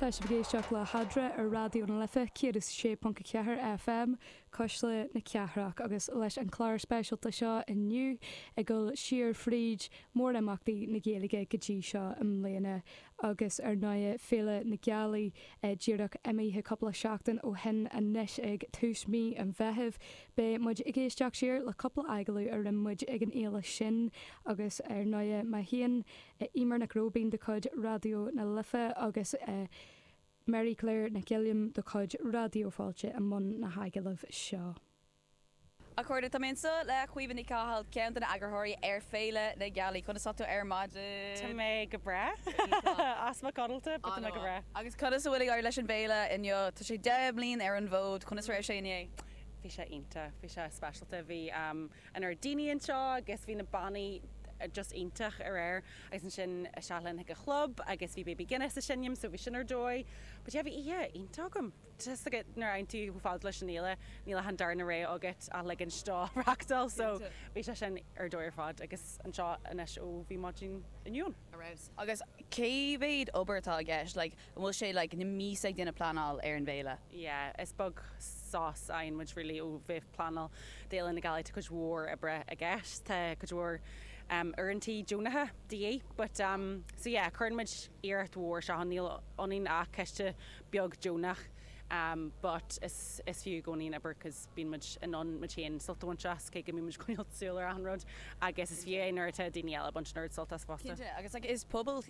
Tá sibh ag éisteacht le hAdhradh ar Raidió na Life 106.4 FM, Cuisle na Cathrach, agus leis an chlár speisialta seo inniu ag dul siar fríd mórimeachtaí na Gaeilge go dtí seo i mbliana agus ar ndóigh Féile na Gealaí díreach imithe cúpla seachtain ó shin anois ag tús mhí an Mheithimh. Beidh muid ag éisteacht siar le cúpla agallamh a rinne muid ag an fhéile sin agus ar ndóigh má théann Eimear Nic Róibín de chuid Raidió na Life agus Mary Claire Nic Uilliam de chuid Raidió Fáilte i mbun na n-agallamh seo. A chairde, tá mé anseo le Caoimhe Ní Chathail, ceann de na eagraitheoirí ar Féile na Gealaí. Conas atá tú ar maidin? Tá mé go breá. Easpa codlata, but tá mé go breá. Ááá. Agus conas a bhfuil ag éirí leis an bhféile inniu? Tá sé deich mbliain ar an bhfód. Conas a raibh sé inné? Bhí sé iontach. Bhí sé speisialta. Bhí. lear daoine anseo agus bhí na bannaí just iontach aréir agus ansin isteach linn chuig an chlub agus bhí Baby Guinness ag seinm so bhí sin ar dóigh but yeah bhí oíche iontach agam just like it nuair a fhanann tú chomh fada leis an fhéile níl an darna rogha agat ach ligint dó reachtáil so Cinnte. bhí sé sin ar dóigh ar fad agus anseo anois ó bhí maidin inniu ann. Ar fheabhas. Agus cé mhéad obair atá i gceist, like, An bhfuil sé like na míosa ag déanamh pleanáil ar an bhféile? yeah is beag sos a fhaigheann muid really ó bheith ag pleanáil d'Fhéile na Gealaí tá cuid mhór oibre i gceist tá cuid mhór em uaireantaí deonacha de dhíth but em so yeah cuireann muid iarracht mhór isteach ann níl ionainn ach coiste beag deonach em but is is fiú i gcónaí an obair cause bíonn muid in ann muid féin sult a bhaint as cé go mbíonn muid ag coinneáil súil ar achan rud agus is fiú é nuair atá daoine eile ag baint an oiread suilt as fosta. Cinnte agus like is pobal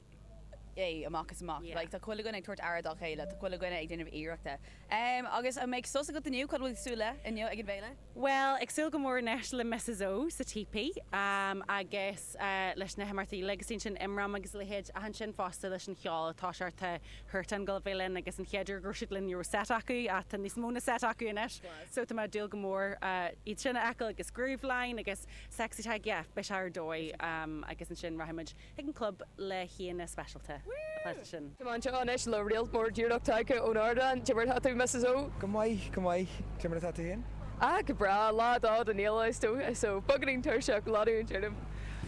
é amach is amach. Yeah. Like, tá chuile dhuine ag tabhairt aire dá chéile, tá chuile dhuine ag déanamh iarrachta. Em, agus an mbeidh sos agat inniu, cad a bhfuil tú ag súil le inniu ag an bhféile? Bhuel, ag súil go mór anois le Missus O sa típí, em, agus, eh, leis na himeachtaí uilig, is ansin IMRAM agus a leithéid ach ansin fosta leis an cheol tá sort of Huartan go bheith linn agus an chéad uair go raibh siad linn ní raibh set acu ach tá níos mó na set acu anois Class. so tá mé ag dúil go mór, eh, iad sin a fheiceáil agus Grooveline agus Sexytag, yeah, beidh sé ar dóigh, em, agus ansin rachaidh muid. Ag an gclub le haíonna speisialta atá siad sin. Táim anseo anois le réalt mór díreach tagtha ón ardán. Cé mar atá tú, Missus O? Go maith, go maith. Cé mar atá tú féin? Ah, go breá. Lá a dó den fhéile, is dócha, so beagáinín tuirseach, leanúint orm.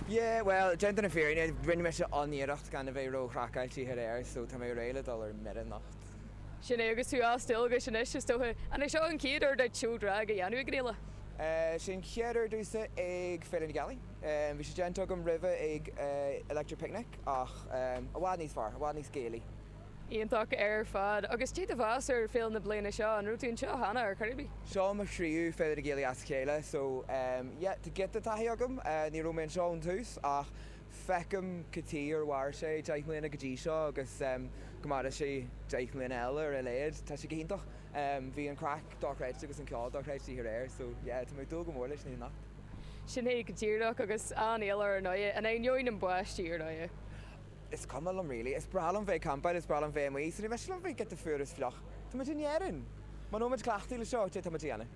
Yeah, bhuel, déanta na fírinne, rinne mise an-iarracht gan a bheith ró-chraiceáilte aréir, so tá mé réidh le dul ar mire anocht. Sin é, agus tú as dualgas anois, is dócha. An é seo an chéad uair duit seó drag a dhéanamh ag an fhéile? Sea, an chéad uair domhsa ag Féile na Gealaí. Bhí sé déanta agam roimhe ag Electric Picnic ach i bhfad níos fearr, i bhfad níos Gaelaí. Iontach ar fad. Agus cad é do mheas ar Féile na bliana seo? An raibh tú anseo cheana ar chor ar bith? Seo mo thríú Féile na Gealaí as a chéile so yeah tá giota taithí agam. Ní raibh mé anseo ón tús ach feicim gur mhair sé deich mbliana go dtí seo agus go maire sé deich mbliana eile ar a laghad. Tá sé go hiontach. Bhí an craic dochreidte agus an ceol dochreidte aréir so yeah tá mé ag dúil go mór leis na himeacht. Sin é go díreach, agus an-éileamh ar ndóigh, in ainneoin an bháistí ar ndóigh. Is cuma liom really. Is breá liom bheith ag campáil, is breá liom bheith amuigh, so ní miste liom bheith giota fuar is fliuch. Tá muid in Éirinn! Muna bhfuil muid cleachtaithe le seo, céard atá muid a dhéanamh.